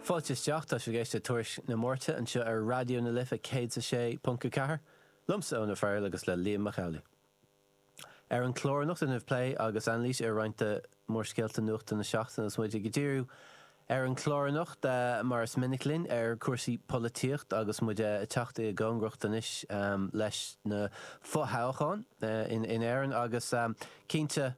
Fáilte isteach, tá sibh ag éisteacht le Tuairisc na Máirte anseo ar Raidió na Life 106.4, liomsa Eoin Ó Fearghail agus le Liam Mac Amhlaigh. Ar an gclár anocht déanfaimid plé agus anailís ar roinnt de mhórscéalta nuachta na seachtaine agus muid ag díriú ar an gclár anocht, mar is minic linn, ar chúrsaí polaitíochta agus muid ag teacht i gcóngaracht anois leis na fothoghcháin in Éirinn agus cinnte,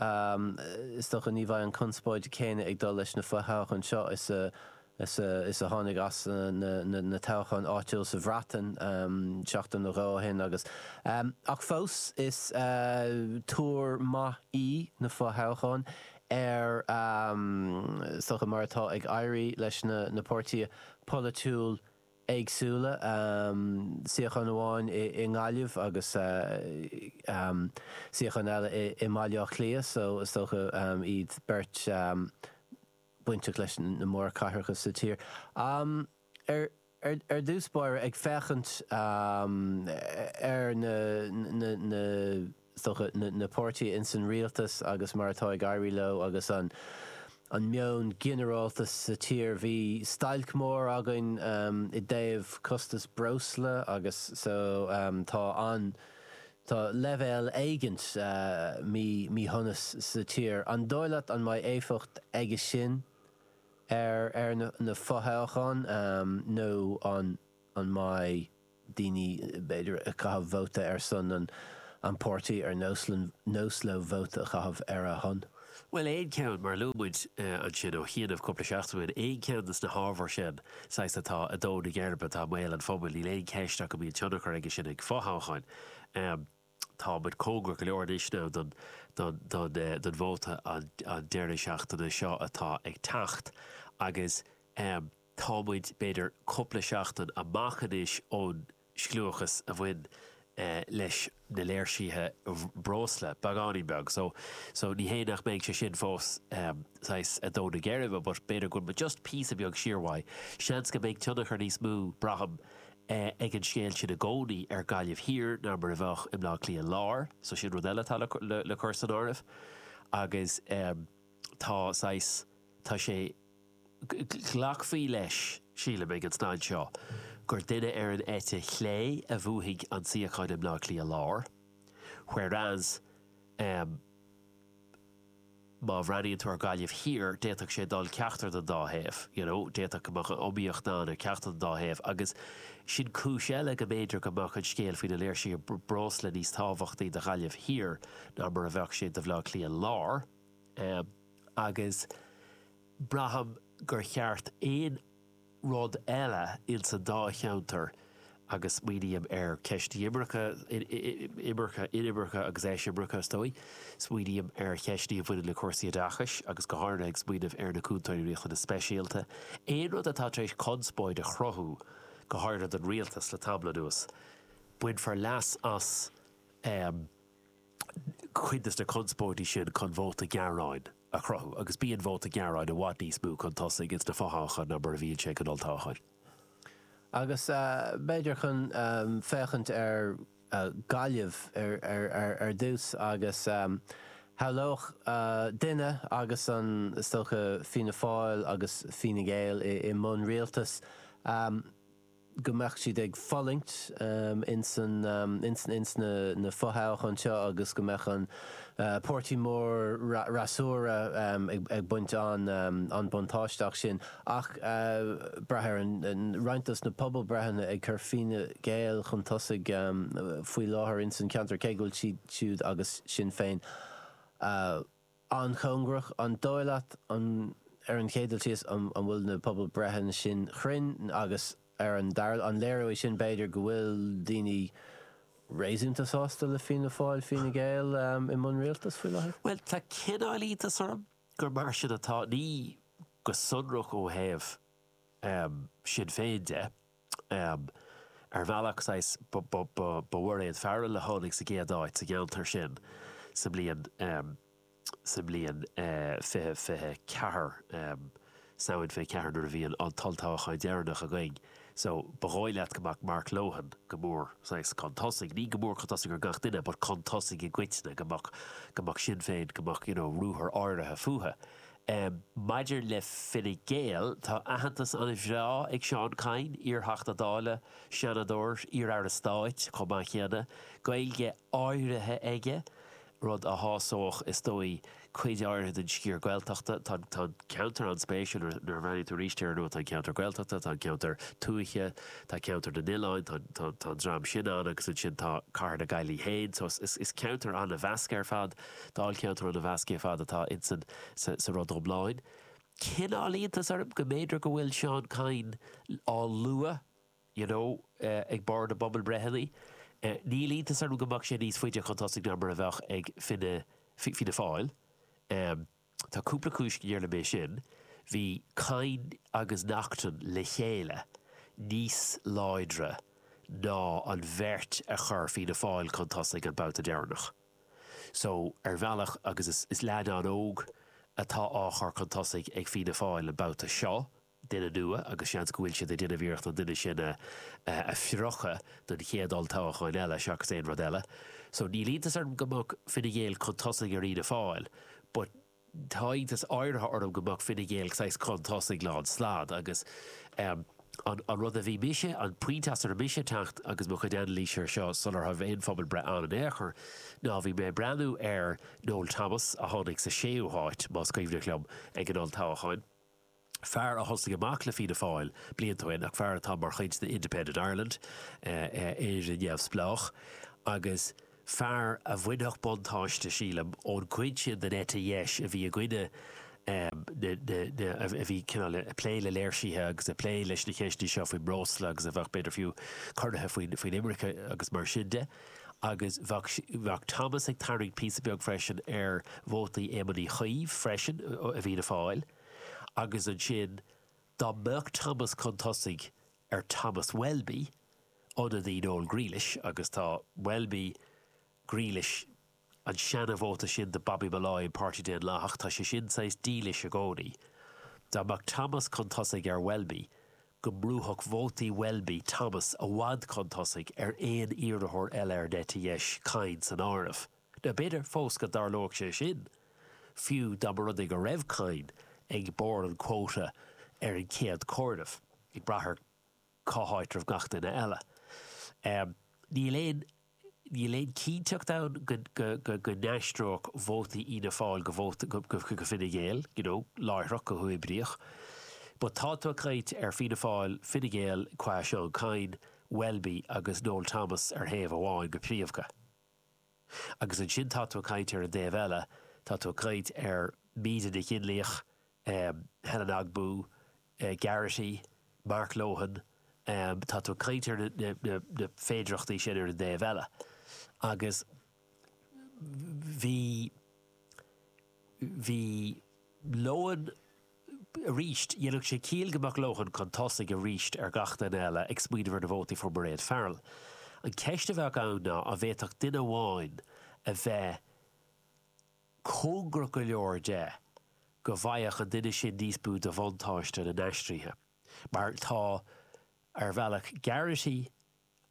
Is dócha ní bheidh an conspóid chéanna ag dul leis na fo-thoghcháin seo is a tháinig as na toghcháin áitiúil sa Bhreatain seachtain nó dhó ó shin agus ach fós is tuar maith í na fo-thoghcháin ar is dócha mar atá ag éirí leis na páirtithe polaitiúil éagsúla, suíochán amháin i nGaillimh agus suíochán eile i mBaile Átha Cliath, so is dócha iad beirt bainteach leis na mórchathracha sa tír. Ar dtús báire, ag féachaint ar na. sochair na páirtithe insan rialtas agus mar atá ag éirí leo agus an an meon ginearálta sa tír. Bhí stailc mór againn i dtaobh costas breosla agus so tá an tá leibhéal éigint mí míshonas sa tír. An dóigh leat an mbeidh éifeacht aige sin ar ar na fothoghcháin nó an an mbeidh daoine, b'fhéidir, ag caitheamh vóta ar son an páirtí is nós leo vóta a chaitheamh ar a shon. Bhuel, aon cheann, mar a luaigh muid ansin ó chianaibh cúpla seachtain ó shin, aon cheann de na hábhair sin, saghas, atá ar dhó na geirbe, atá i mbéal an phobail, níl aon cheist ach go mbíonn tionchar aige sin ag fothoghcháin. Tá muid cóngarach go leor anois now don vóta an deireadh seachtaine seo atá ag teacht agus, Tá muid, b'fhéidir, cúpla seachtain amach anois ón scliúchas a bhain leis na léirsithe breosla, beagáinín beag, so, so ní hé nach mbeidh sé sin fós saghas ar dhó na geirbe but b'fhéidir go bhfuil muid just píosa beag siar uaidh. Seans go mbeidh tionchar níos mó, braithim, ag an scéal sin i gcónaí ar Ghaillimh Thiar ná mar a bheadh i mBleá Cliath Láir, so sin rud eile atá le cur san áireamh agus tá saghas, tá sé, Glacfaí leis, sílim, ag an staid seo gur duine ar an eite chlé a bhuafaidh an suíochán i mBleá Cliath Láir, whereas má bhreathnaíonn tú ar Ghaillimh Thiar, d'fhéadfadh sé dul ceachtar den dá thaobh, you know, d'fhéadfadh go mbeadh an iomaíocht ann ar cheachtar den dá thaobh agus sin cúis eile go mb'fhéidir go mbeadh an scéal faoi na léirsithe breosla níos tábhachtaí do Ghaillimh Thiar ná mar a bheadh sé do Bhleá Cliath Láir. Agus braithim thar aon rud eile ins an dá cheantar, agus smaoiním ar cheist na imirce, imirce, inimirce agus eisimirce is dóigh, smaoiním ar cheisteanna a bhaineann le cúrsaí oideachais agus go háirithe ag smaoineamh ar na Cúntóirí Riachtanas Speisialta, aon rud atá tar éis conspóid a chruthú, go háirithe don Rialtas, le tamall anuas, bainfear leas as. cuid de na conspóidí sin chun vóta gearáin a chruthú, agus bíonn vóta gearáin i bhfad níos mó chun tosaigh ins na fothoghcháin ná mar a bhíonn sé ag an olltoghchán. Agus b'fhéidir chun féachaint ar Ghaillimh ar dtús, agus shamhlódh duine, agus an, is dócha, Fianna Fáil agus Fine Gael i mbun rialtais, go mbeadh siad ag fulaingt ins na fo-thoghcháin seo agus go mbeadh an páirtí mór fhreasúra ag baint an-buntáiste as sin. Ach braitear an, roinnt dos na pobalbhreitheanna ag cur Fine Gael chun tosaigh faoi láthair ins an cheantar, cé go bhfuil siad siúd agus Sinn Féin, an-chóngarach, an dóigh leat, an ar an chéad dul síos, an an bhfuil na pobalbhreitheanna sin cruinn, agus ar an dara, an léireoidh sin, b'fhéidir, go bhfuil daoine réasúnta sásta le Fianna Fáil, Fine Gael i mbun rialtais faoi láthair? Bhuel, tá cineál iontas orm gur mar sin atá, ní go sonrach ó thaobh Shinn Féin de. Ar bhealach, saghas, ba í Mairéad Farrell a tháinig sa gcéad áit sa gceantar sin sa mbliain 2024, Samhain 24 nuair a bhí an t-olltoghchán deireanach againn. So, ba dhóigh leat go mbeadh Mark Lohan go mór, saghas, chun tosaigh, ní go mór chun tosaigh ar gach duine, but chun tosaigh i gcoitinne, go mbeadh Sinn Féin, go mbeadh, you know, ruathar áirithe fúthu. Um Maidir le Fine Gael, tá aitheantas an-bhreá ag Seán Kyne, iarTheachta Dála, Seanadóir, iarAire Stáit chomh maith céanna, Gaeilge áirithe aige, rud a shásódh, is dóigh, cuid áirithe den sciar Gaeltachta. Tá an ceantar an-spéisiúil, nuair a bhreathnaíonn tú arís air, tá an ceantar Gaeltachta, tá an ceantar tuaithe, tá ceantar na n-oileán, tá an dream sin ann agus ansin tá cathair na Gaillimhe féin. So is ceantar an-mheasctha ar fad. Dáilcheantar an-mheasctha ar fad atá insan sa rud iomlán. Cineál iontas orm go mb'fhéidir go bhfuil Seán Kyne á lua, you know, ag barr na bpobalbhreitheanna. Níl iontas orm go mbeadh sé níos faide chun tosaigh ná mar a bheadh ag Fine Fianna Fáil. Tá cúpla cúis gur léir dom é sin, bhí Kyne agus Naughten le chéile níos láidre ná an bheirt a chuir Fianna Fáil chun tosaigh an babhta deireanach. So, ar bhealach, agus is leaid an-óg atá á chur chun tosaigh ag Fianna Fáil an babhta seo, duine nua agus seans go bhfuil siad ag déanamh iarracht an duine sin a phromhadh don chéad olltoghacháin eile seachas aon rud eile so níl iontas orm go mbeadh Fine Gael chun tosaigh ar Fhianna Fáil but tá iontas áirithe orm go mbeadh Fine Gael saghas chun tosaigh lán stad agus ehm an an rud a bhí mise an pointe as a raibh mise ag teacht agus mo chuid anailíse ar seo sular raibh aon phobalbhreith ann in aon chor ná bhí mé ag breathnú ar Noel Thomas a tháinig sa séú háit más cuimhneach liom ag an olltoghacháin. fear a thosaigh amach le Fianna Fáil blianta ó shin ach fear atá mar chuid de Independent Ireland, Éire Neamhspleách, agus fear a bhainfeadh buntáiste, sílim, ón gcuid sin den eite dheis a bhí i gcoinne na, a bhí cineál ag plé le léirsithe agus ag plé leis na ceisteanna seo faoin mbreosla agus a bheadh, b'fhéidir fiú, corraithe faoin imirce agus mar sin de. Agus bheadh Thomas ag tarraingt píosa beag freisin ar vótaí Éamoin Uí Chuív freisin i bhFianna Fáil. agus ansin dá mbeadh Thomas chun tosaigh ar Thomas Welby, ionadaí Noel Grealish, agus tá Welby, Grealish, an seana-vóta sin de Bobby Molloy, an Páirtí Daonlathach, tá sé sin saghas dílis i gcónaí, dá mbeadh Thomas chun tosaigh ar Welby, go mbrúfadh vótaí Welby Thomas i bhfad chun tosaigh ar aon iarrthóir eile ar an eite dheis, Kyne san áireamh. Nó b'fhéidir fós go dtarlódh sé sin, fiú dá mba rud é go raibh Kyne ag barr an phóla ar an gcéad comhaireamh, ag brath ar cá háit a raibh gach duine eile. Níl aon níl aon cinnteacht ann go n-aistreodh vótaí Fhianna Fáil go vótaí go Fine Gael, you know, láithreach, go huathoibríoch. But tá tú ag caint ar Fianna Fáil, Fine Gael cé Seán Kyne, Welby agus Noel Thomas ar thaobh amháin go príomhdha. Agus ansin tá tú ag caint ar an dtaobh eile, tá tú ag caint ar Míde Nic Fhionnlaoich, Helen Ogbu, Garrity, Mark Lohan, tá tú ag caint ar na féidearthachtaí sin ar an dtaobh eile. Agus bhí, bhí Lohan, aríst. Dhéanfadh sé ciall go mbeadh Lohan chun tosaigh aríst ar gach duine eile ag smaoineamh ar na vótaí a fuair Mairéad Farrell. An cheist a bheadh ann ná an bhféadfadh duine amháin a bheith cóngarach go leor de go bhfaigheadh an duine sin níos mó de bhuntáiste na n-aistrithe, mar tá, ar bhealach, Garrity,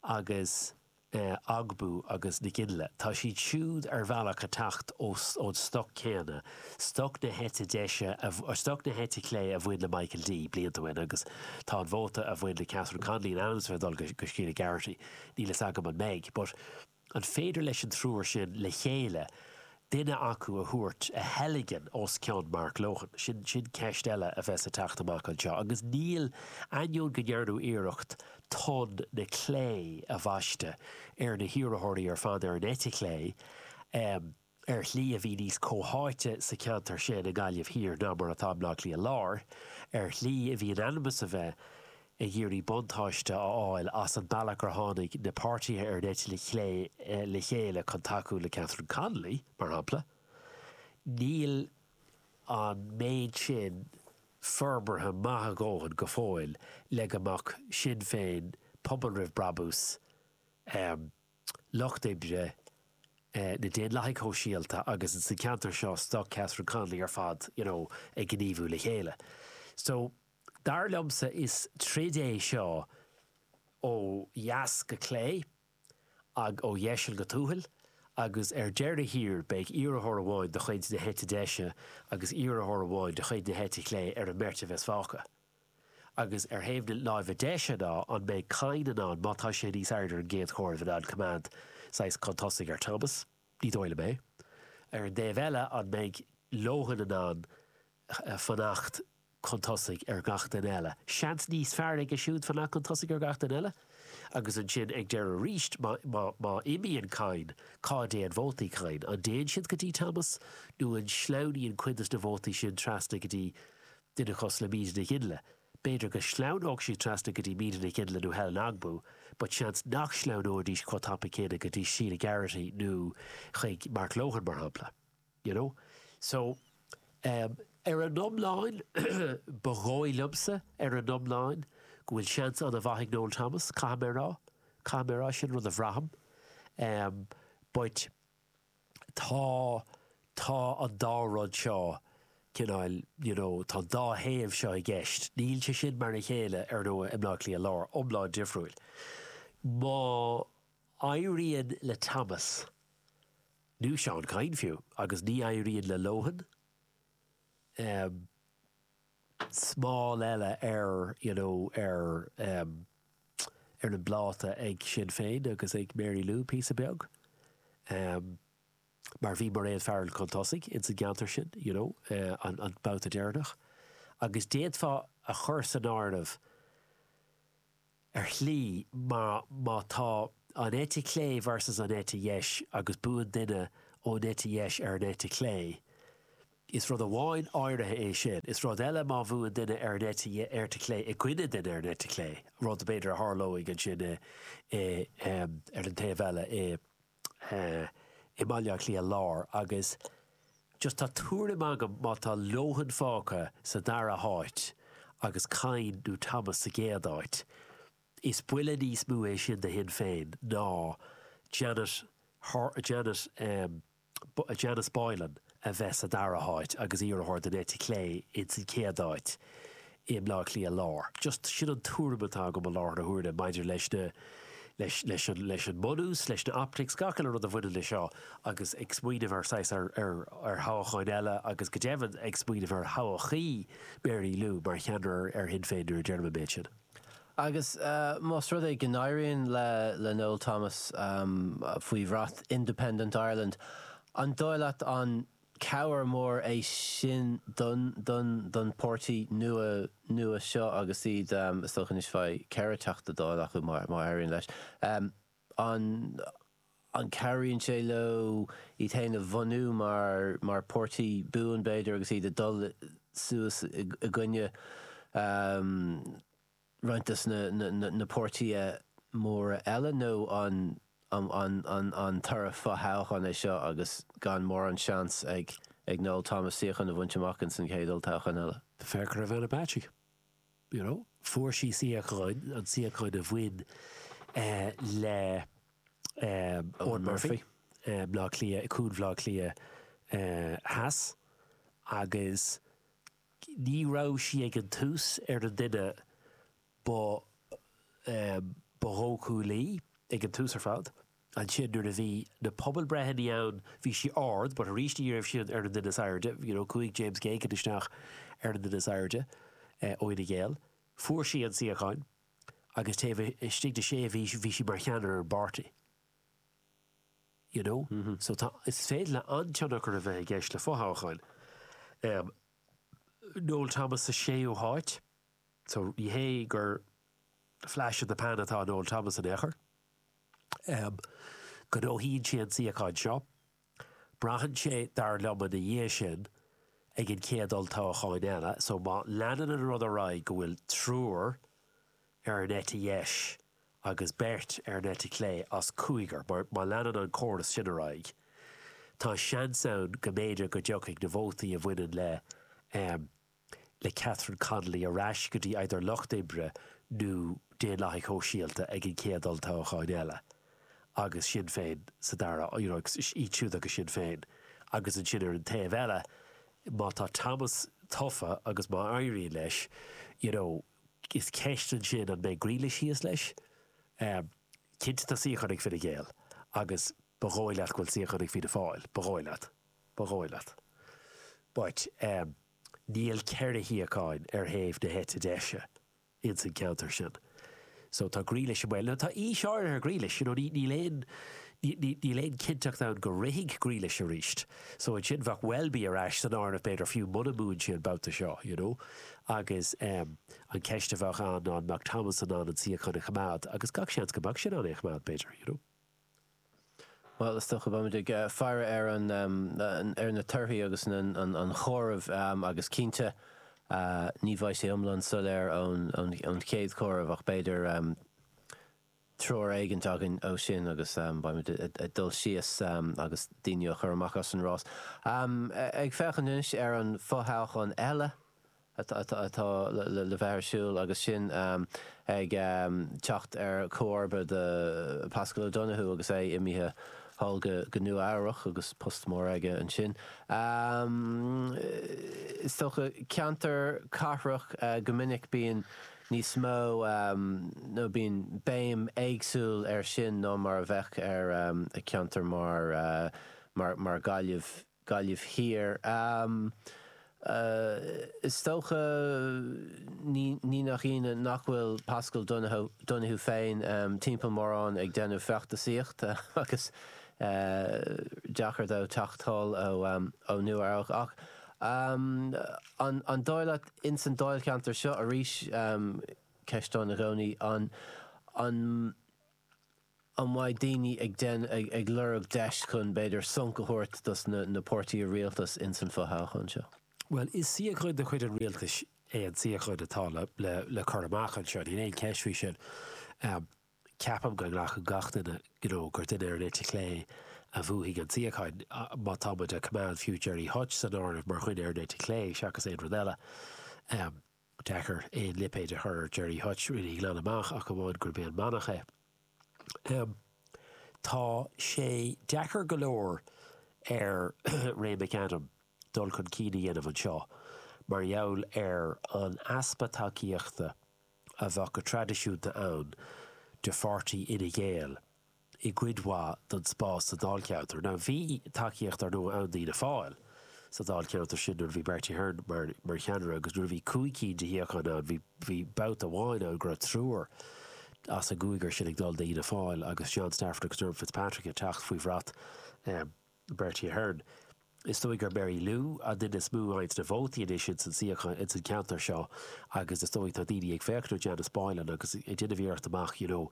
agus Ogbu agus Nic Fhionnlaoich. Tá siad siúd ar bhealach ag teacht ón stoc céanna, stoc na heite deise, stoc na heite clé a bhain le Michael D. blianta ó shin agus tá an vóta a bhain le Catherine Connolly in ainm is a bheith ag dul go Sheila Garrity. Níl fhios agam an mbeidh, but. An féidir leis an triúr sin le chéile duine acu a thabhairt, a theilgean, os cionn Mark Lohan? Sin ceist eile a bheas ag teacht amach anseo. Agus níl, ainneoin go ndearnadh iarracht tonn na clé a bhaisteadh ar na hiarrthóirí ar fad ar an eite chlé, ar shlí a bhí níos comhtháite sa cheantar sin i nGaillimh Thiar ná mar atá i mBleá Cliath Láir, ar shlí a bhí in ainm is a bheith ag iarraidh buntáiste a fháil as an bealach gur tháinig na páirtithe ar an eite chlé le chéile chun tacú le Catherine Connolly, mar shampla. Níl an méid sin forbartha maith a dhóthain go fóill le go mbeadh Sinn Féin, Pobal Roimh Brabús, Lucht Oibre, na Daonlathaigh Shóisialta agus sa cheantar seo stoc Catherine Connolly ar fad, you know, ag gníomhú le chéile. So, dar liomsa is troid é seo ó dheas go clé agh ó dheiseal go tuathal agus ar deireadh thiar beidh iarrthóir amháin de chuid na heite deise agus iarrthóir amháin de chuid na heite clé ar an mbeirt a bheas fágtha. Agus ar thaobh na láimhe deise ná an mbeidh Kyne in ann, má tá sé níos airde ar an gcéad chomhaireamh, in ann coimeád saghas chun tosaigh ar Thomas? Ní dóigh liom é. Ar an dtaobh eile, an mbeidh Lohan in ann fanacht chun tosaigh ar gach duine eile? Seans níos fearr aige siúd fanacht chun tosaigh ar gach duine eile. Agus ansin ag deireadh arís, má imíonn Kyne, cá dtéann vótaí Kyne? An dtéann siad go dtí Thomas nó an sleamhnaíonn cuid de na vótaí sin trasna go dtí duine cosúil le Míde Nic Fhionnlaoich. B'fhéidir go sleamhnódh siad trasna go dtí Míde Nic Fhionnlaoich nó Helen Ogbu, but seans nach sleamhnóidís chomh tapa céanna go dtí Sheila Garrity nó chuig Mark Lohan, mar shampla, you know. So, um, ar an iomlán, ba dhóigh liomsa, ar an iomlán, go bhfuil seans an-mhaith ag Noel Thomas, caithfidh mé a rá, caithfidh mé a rá, sin rud a bhraithim, um, but, tá, tá an dá rud seo, cineál, you know, tá an dá thaobh seo i gceist. Níl sé sin mar a chéile, ar ndóigh, i mBleá Cliath Láir, iomlán difriúil. Má éiríonn le Thomas, nó Seán Kyne fiú, agus ní éiríonn le Lohan, eh, smál eile ar you know ar em ar an bpláta ag Sinn Féin agus ag Mary Lou píosa beag em mar bhí Mairéad Farrell chun tosaigh ins an gceantar sin you know an an babhta deireanach agus d'fhéadfá a chur san áireamh ar shlí, mar má tá an eite chlé versus an eite dheis agus buann duine ón eite dheis ar an eite chlé, is rud amháin áirithe é sin, is rud eile má bhuann duine ar an eite chlé i gcoinne duine ar an eite chlé, rud b'fhéidir a tharlóidh ansin ar an taobh eile i. eh i mBaile Átha Cliath Lár agus just tá tuairim agam má tá Lohan fágtha sa dara háit agus Kyne nó Thomas sa gcéad áit, is buille níos mó é sin do Shinn Féin ná Janet Har, Janet em, Janice Boylan. a bheith sa dara háit agus iarrthóir den eite chlé ins an chéad áit i mBleá Cliath Lár. Just sin an tuairim atá agam i láthair na huaire maidir leis na, leis, leis an, leis an mbunús, leis na optics, gach aon rud a bhaineann leis seo agus ag smaoineamh ar saghas, ar, ar, ar thoghacháin eile agus go deimhin ag smaoineamh ar thodhchaí Mary Lou mar cheannaire ar Shinn Féin nuair a deirim an méid sin. Agus más rud é go n-éiríonn le Noel Thomas, faoi bhrat Independent Ireland, an dóigh leat an cabhair mór é sin don pháirtí nua seo agus iad, is dócha anois bheidh ceithre Teachta Dála acu má éiríonn leis, an cabhraíonn sé leo iad féin a bhunú mar pháirtí buan, b'fhéidir, agus iad ag dul suas i gcoinne? roinnt de na páirtithe móra eile nó an toradh fo-thoghcháin é seo agus gan mórán seans ag Noel Thomas suíochán a bhaint amach ins an chéad olltoghchán eile. Féach ar Ivana Bacik, you know, fuair sí suíochán, an suíochán a bhain le Eoghan Murphy, Bleá Cliath, Cuan Bhleá Cliath Theas agus Ní raibh sí ag an tús ar an duine ba ba dhóchúlaí, ag an tús ar fad. Ansin, nuair a bhí na pobalbhreitheannaí ann, bhí sí ard, but aríst ní raibh sí ar an duine is airde, you know, chuaigh James Geoghegan isteach ar an duine is airde ó Fhine Gael. Fuair sí an suíochán agus taobh istigh de sé mhí bhí sí mar cheannaire ar an bpáirtí. you know. So tá, is féidir le an-tionchar a bheith i gceist le fothoghcháin. Noel Thomas sa séú háit, so ní hé gur flash in the pan atá Noel Thomas in aon chor. Gnóthaíonn sé an suíochán seo. Braitheann sé, dar liom, ina dhiaidh sin, ag an chéad olltoghcháin eile. So, má leanann an rud ar aghaidh go bhfuil triúr ar an eite dheis agus beirt ar an eite chlé as cúigear, má, má leanann an córas sin ar aghaidh, tá seans ann go mb'fhéidir go dtiocfaidh na vótaí a bhaineann le, eh, le Catherine Connolly ar ais go dtí either Lucht Oibre nó Daonlathaigh Shóisialta ag an gcéad olltoghchán eile, agus Sinn Féin sa dara, you know idir iad siúd agus Sinn Féin. Agus ansin ar an taobh eile, má tá Thomas tofa agus má éiríonn leis, you know is ceist ansin an mbeidh Grealish thíos leis? Cinnte tá suíochán ag Fine Gael agus ba dhóigh leat go bhfuil suíochán ag Fianna Fáil, ba dhóigh leat. Ba dhóigh leat. But níl ceithre shuíocháin ar thaobh na heite deise ins an ceantar sin. So tá Grealish i mbaol. Now tá aois áirithe ar Grealish, you know, níl aon, níl aon cinnteacht ann go rithfidh Grealish aríst. So ansin bheadh Welby ar ais san áireamh b'fhéidir fiú muna mbuann sé an babhta seo, you know. Agus an ceist a bheadh ann ná an mbeadh Thomas in ann an suíochán a choimeád agus gach seans go mbeadh sé in ann é a choimeád b'fhéidir, you know. Bhuel, is dócha beimid ag faire ar, ar na torthaí agus an comhaireamh agus cinnte ní bheidh sé iomlán soiléir ón chéad chomhaireamh ach b'fhéidir treoir éigint againn ó sin agus beimid ag dul síos agus daoine á chur amach as an rás. Ag féachaint anois ar an fothoghchán eile atá le bheith ar siúl agus sin ag teacht ar chomharba do Paschal Donohoe agus é imithe thall go Nua Eabhrach agus post mór aige ansin, is dócha. Ceantar cathrach go minic bíonn níos mó, nó bíonn béim éagsúil ar sin ná mar a bheadh ar cheantar mar, mar Gaillimh. Gaillimh Thiar. Is dócha, ní nach ionadh, nach bhfuil Paschal Donohoe féin timpeall mórán ag déanamh feachtasaíochta agus deacair dó teacht anall ó Nua-Eabhrac. Ach an dóigh leat, ins an dáilcheantar seo arís, ceist ann i gcónaí, an an mbeidh daoine ag déan, ag, ag lorg deis chun, b'fhéidir, sonc a thabhairt dos na, na páirtithe rialtais ins an fo-thoghchán seo? Bhuel, is suíochán de chuid an rialtais é an suíochán atá le, le, le cur amach anseo. Níl aon cheist faoi sin. Ceapaim go nglacann gach duine, you know, gur duine ar an eite chlé a bhuafaidh an suíochán, má tá muid a' coimeád, fiú, Gerry Hutch san áireamh mar dhuine ar an eite chlé, seachas aon rud eile. deacair aon lipéad a chur ar Gerry Hutch, really, glan amach ach amháin gurb é an manach é. Tá sé deacair go leor ar Ray McAdam dul chun cinn a dhéanamh anseo mar gheall ar an easpa tacaíochta a bheadh go traidisiúnta ann de pháirtí Fhine Gael i gcuid mhaith don spás sa dáilcheantar. Now bhí tacaíocht, ar ndóigh, ann d'Fhianna Fáil sa dáilcheantar sin nuair a bhí Bertie Ahern mar cheannaire agus nuair a bhí cúig cinn de shuíocháin ann bhí babhta amháin ann go raibh triúr as an gcúigear sin ag dul d'Fhianna Fáil agus John Stafford agus Dermot Fitzpatrick ag teacht faoi bhrat Bertie Ahern. Is dóigh gur Mary Lou an duine is mó a fhaigheanns na vótaí anois ins an suíochán ins an ceantar seo agus is dóigh tá daoine ag féachaint ar Janice Boylan agus ag déanamh iarracht déanamh amach you know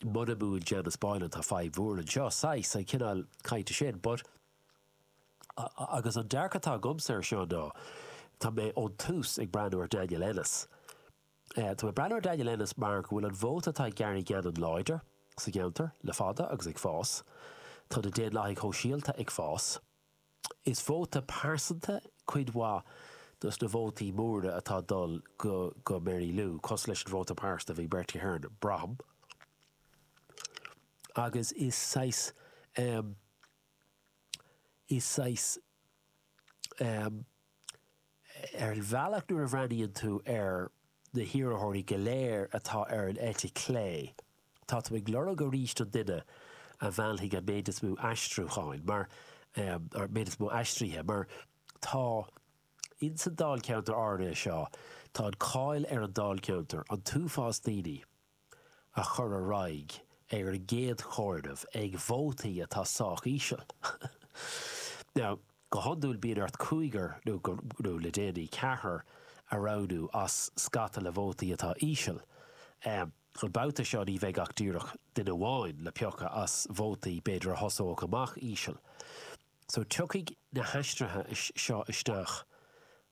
muna mbuann Janice Boylan tá fadhb mhór anseo, saghas, an cineál cainte sin but agus an dearcadh atá agamsa ar seo ná tá mé ón tús ag breathnú ar Daniel Ennis. Tá mé ag breathnú ar Daniel Ennis mar go bhfuil an vóta atá ag Gary Gannon láidir sa gceantar le fada agus ag fás. Tá na Daonlathaigh Shóisialta ag fás. Is vóta pearsanta cuid mhaith dos na vótaí móra atá ag dul go go Mary Lou, cosúil leis an vóta pearsanta a bhí ag Bertie Ahern, braithim. Agus is saghas, is saghas Ar an bhealach nuair a bhreathnaíonn tú ar na hiarrthóirí go léir atá ar an eite chlé, tá tú ag lorg arís an duine a mheallfaidh an méid is mó aistriúcháin, mar, an méid is mó aistrithe, mar tá, ins an Dáilcheantar áirithe seo, tá an cáil ar an Dáilcheantar, an t-uafás daoine a chur ar aghaidh ar an gcéad chomhaireamh ag vótaí atá sách íseal. Now, go hiondúil bíonn ort cúigear nó, nó le déanaí, ceathrar a roghnú as scata le vótaí atá íseal. An babhta seo ní bheidh ach díreach duine amháin le piocadh as vótaí b'fhéidir a thosóidh amach íseal. So tiocfaidh na haistrithe seo isteach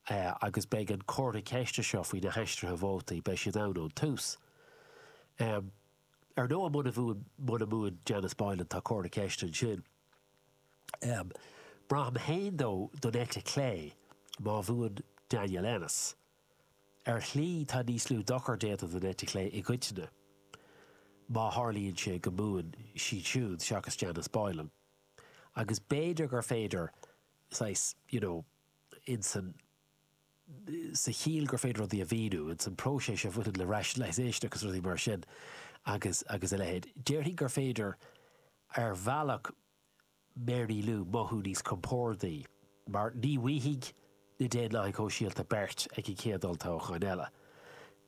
agus beidh an comhartha ceiste seo faoi na haistrithe vótaí, beidh sin ann ón tús. Ar ndóigh, muna mbuann Janice Boylan, tá comhartha ceiste ansin. Braithim féin dó don eite chlé má bhuann Daniel Ennis. Ar shlí, tá níos lú dochar déanta don eite chlé i gcoitinne, má tharlaíonn sé go mbuann siad siúd seachas Janice Boylan. agus b'fhéidir gur féidir, saghas, you know, ins an, sa chiall gur féidir rudaí a mhíniú, ins an próiseas a bhaineann le rationalisation agus rudaí mar sin agus, agus a leithéid. Déarfainn gur féidir, ar bhealach, Mary Lou mothú níos compordaí, mar ní bhfaighidh na Daonlathaigh Shóisialta beirt ag an chéad olltoghchán eile.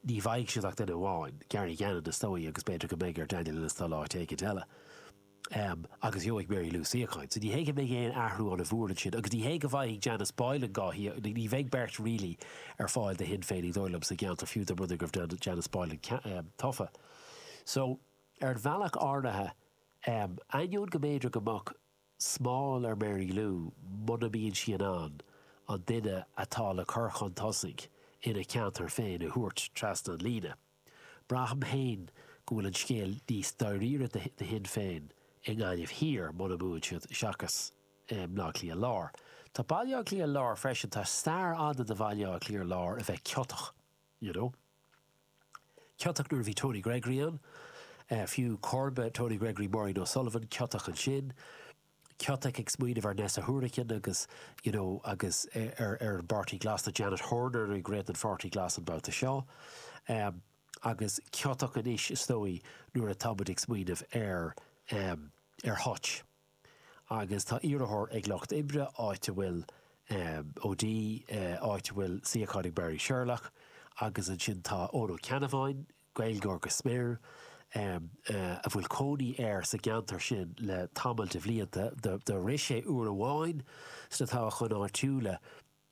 Ní bhfaighidh siad ach duine amháin, Gary Gannon, is dóigh, agus b'fhéidir go mbeidh ar Daniel Ennis dul áit éigint eile. Am, agus gheobhaidh Mary Lou suíochán. So ní hé go mbeidh aon athrú ann ó bhuair ansin agus ní hé go bhfaighidh Janice Boylan an suíochán, ní bheidh beirt really ar fáil do Shinn Féin is dóigh liom sa gceantar fiú dá mba rud é go raibh Janice Boylan tofa. So ar an bhealach áirithe am, ainneoin go mb'fhéidir go mbeadh smál ar Mary Lou muna mbíonn sí in ann an duine atá le cur chun tosaigh ina ceantar féin a thabhairt trasna an líne, Braithim féin go bhfuil an scéal níos dáiríre do Shinn Féin i nGaillimh Thiar, muna mbuann siad, seachas i mBleá Cliath Láir. Tá Baile Átha Cliath Láir freisin, tá stair fhada de Bhaile Átha Cliath Láir a bheith ciotach, you know. Ciotach nuair a bhí Tony Gregory ann, fiú, comharba Tony Gregory, Maureen O'Sullivan, ciotach ansin. Ciotach ag smaoineamh ar Neasa Hourican agus you know agus ar ar an bPáirtí Glas tá Janet Horner ag rith an Pháirtí Glas an babhta seo em agus ciotach anois is dóigh nuair atá muid ag smaoineamh ar em ar Hutch agus tá iarrthóir ag Lucht Oibre áit a bhfuil em O'Dea eh áit a bhfuil suíochán ag Marie Sherlock agus ansin tá Eoin Ó Ceannabháin Gaeilgeoir go smior, a bhfuil cónaí air sa gceantar sin le tamall de bhlianta, do rith sé uair amháin sna toghcháin áitiúla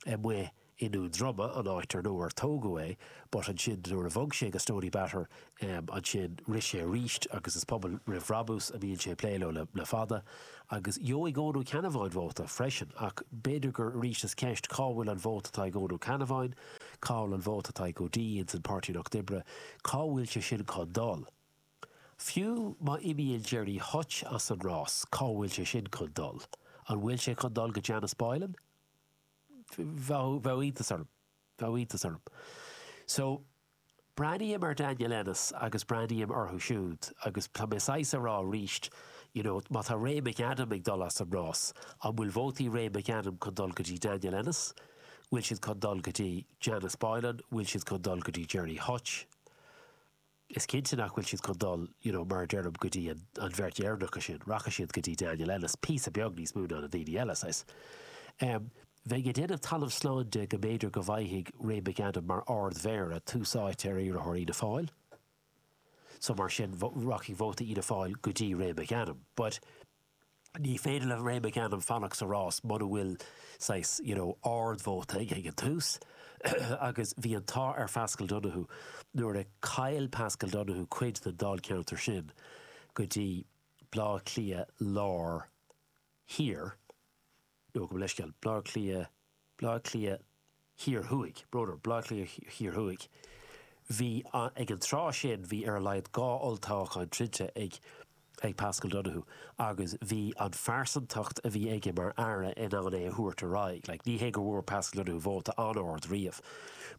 amuigh i nDún Droma, an áit ar ar tógadh é, but ansin nuair a bhog sé go Stoneybatter ansin, rith sé arís agus is Pobal Roimh Bhrabús a mbíonn sé ag plé leo le fada. Agus gheobhaidh Eoin Ó Ceannabháin vóta freisin, ach b'fhéidir go arís is ceist cá bhfuil an vóta atá ag Eoin Ó Ceannabháin? Cá bhfuil an vóta atá ag O'Dea ins an Páirtí Lucht Oibre? Cá bhfuil sé sin chun dul? Fiú má imíonn Gerry Hutch as an rás, cá bhfuil sé sin chun dul? An bhfuil sé chun dul go Janice Boylan? Bheadh iontas orm. Bheadh iontas orm. So, Breathnaím ar Daniel Ennis agus breathnaím orthu siúd agus tá mé saghas a rá arís, you know, má tá Ray McAdam ag dul as an rás, an bhfuil vótaí Ray McAdam chun dul go dtí Daniel Ennis? Bhfuil siad chun dul go dtí Janice Boylan? Bhfuil siad chun dul go dtí Gerry Hutch? Is cinnte nach bhfuil siad chun dul, you know, mar a deirim, go dtí an bheirt dheireanacha sin. Rachaidh siad go dtí Daniel Ennis, píosa beag níos mó ná na daoine eile, saghas. bheinn ag déanamh talamh slán de go mb'fhéidir go bhfaighfidh Ray McAdam mar Ard-Mhéara tús áite ar iarrthóir Fhianna Fáil so mar sin rachaidh vóta Fhianna Fáil go dtí Ray McAdam but ní féidir le Ray McAdam fanacht sa rás muna bhfuil saghas you know ard-vóta aige ag an tús agus bhí an t-ádh ar Phaschal Donohoe nuair a chaill Paschal Donohoe cuid den Dáilcheantar sin go dtí Bleá Cliath Lár Thiar. nó gabh mo leithscéal, Bleá Cliath, Bleá Cliath Thiar Thuaidh, ar ndóigh, Bleá Cliath Thiar Thuaidh, bhí, ag an tráth sin, bhí ar a laghad dhá olltoghchán cinnte ag ag Paschal Donohoe agus bhí an phearsantacht a bhí aige mar Aire in ann é a thabhairt ar aghaidh. Like, ní hé go bhfuair Paschal Donohoe vóta an-ard riamh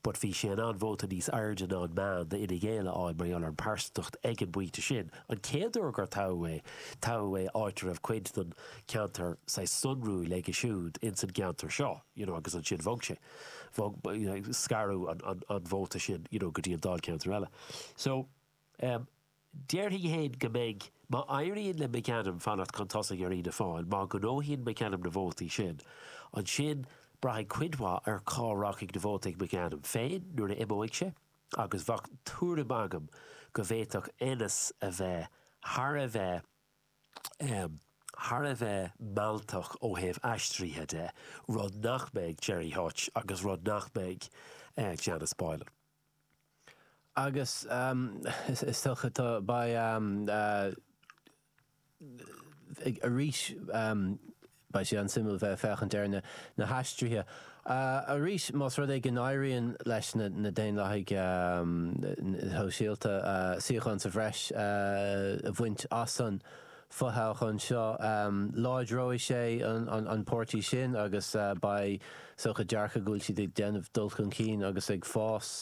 but bhí sé in ann vóta níos airde ná an meán d'Fhine Gael a fháil mar gheall ar an bpearsantacht ag an bpointe sin. An chéad uair gur toghadh é, toghadh é áit a raibh cuid den ceantar sa sonrú aige siúd ins an gceantar seo you know agus ansin bhog sé, bhog, scaradh an vóta sin you know go dtí an dáilcheantar eile. So, em, déarfainn fhéin go mbeidh, má éiríonn le McAdam fanacht chun tosaigh ar Fhianna Fáil, má ghnóthaíonn McAdam na vótaí sin, ansin braithfidh cuid mhaith ar cá rachaidh na vóta ag McAdam féin nuair a imeoidh sé agus bheadh tuairim agam go bhféadfadh Ennis a bheith thar a bheith thar a bheith mealltach ó thaobh aistrithe de, rud nach mbeidh Gerry Hutch agus rud nach mbeidh Janice Boylan. Agus is dócha tá arís Beidh sé an-suimiúil bheith ag féachaint ar na haistrithe arís más rud é go n-éiríonn leis na Daonlathaigh Shóisialta suíochán sa bhreis a bhaint as an bhfothoghchán seo. Láidreoidh sé an páirtí sin agus beidh is dócha dearcadh go bhfuil siad ag déanamh dul chun cinn agus ag fás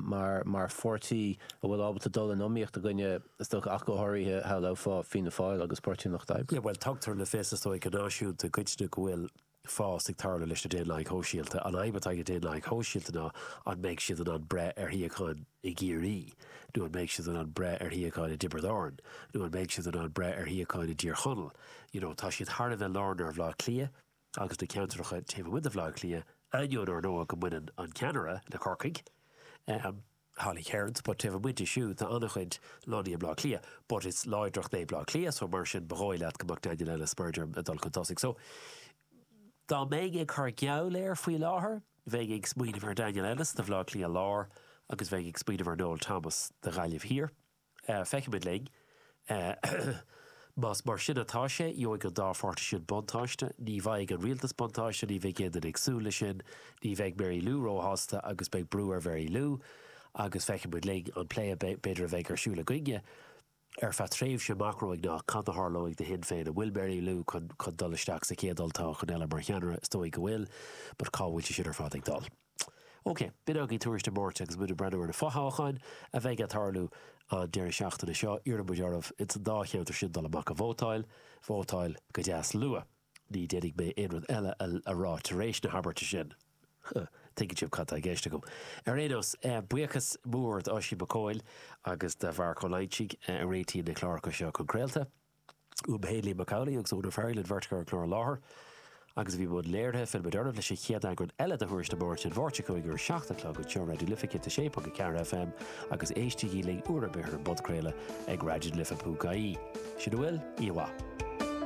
mar pháirtí a bhfuil ábalta dul in iomaíocht i gcoinne, is dócha, ach go háirithe shamhlófá Fianna Fáil agus Páirtí an Lucht Oibre. Bhuel, tugtar le fios, is dóigh, go náisiúnta i gcoitinne go bhfuil fás ag tarlú leis na Daonlathaigh Shóisialta. An fhadhb atá ag na Daonlathaigh Shóisialta ná an mbeidh siad in ann breith ar shuíocháin i gCiarraí, nó an mbeidh siad in ann breith ar shuíocháin i dTiobraid Árann, nó an mbeidh siad in ann breith ar shuíocháin i dTír Chonaill. You know, tá siad thar a bheith lárnaithe ar Bhaile Átha Cliath. agus na ceantracha taobh amuigh de Bhaile Átha Cliath, ainneoin, ar ndóigh, go mbaineann an ceannaire le Corcaigh, Holly Cairns, but taobh amuigh di siúd tá an-chuid lonnaithe i mBleá Cliath, but is láidreacht é Bleá Cliath, so mar sin ba dhóigh leat go mbeadh Daniel Ennis, mar a deirim, ag dul chun tosaigh. So dá mbeinn ag cur geall air faoi láthair, bheinn ag smaoineamh ar Daniel Ennis do Bhleá Cliath Láir agus bheinn ag smaoineamh ar Noel Thomas do Ghaillimh Thiar. Feicfimid linn. Más mar sin atá sé, gheobhaidh an dá pháirtí sin buntáiste. Ní bhfaighidh an rialtas buntáiste, ní bheidh éinne ag súil leis sin, ní bheidh Mary Lou róshásta agus beidh brú ar Mhary Lou. Agus feicfimid linn. An plé b'fhéidir a bheidh ar siúl againne ar feadh tréimhse amach romhainn ná cad a tharlóidh do Shinn Féin. An bhfuil Mary Lou chun dul isteach sa chéad olltoghchán eile mar cheannaire? Is dóigh go bhfuil, but cá bhfuil sé sin ar fad ag dul? OK, b'in agaibh Tuairisc na Máirte agus muid ag breathnú ar na fothoghcháin a bheidh ag tarlú an deireadh seachtaine seo. Iarrann muid oraibh ins an dá cheantar sin dul amach ag vótáil. Vótáil go deas luath. Ní déanfaidh mé aon rud eile a rá tar éis na habairte sin. Tuigeann sibh cad tá i gceist agam. Ar aon nós, buíochas mór d'Oisín Mac Cóil agus do Mharc Ó Loingsigh a réitíonn na cláracha seo chun craolta. B'é Liam Mac Amhlaigh agus Úna Farrelly an bheirt a chuir an clár i láthair agus bhí i mbun léirithe. Fillfimid oraibh leis an chéad eagrán eile de Thuairisc na Máirte, an Mháirt seo chugainn ar 7 a chlog anseo ar Raidió na Life 106.4 FM agus éistigí linn uair ar bith ar an bpodchraoladh ag raidionalife.ie. Sin a bhfuil, oíche mhaith.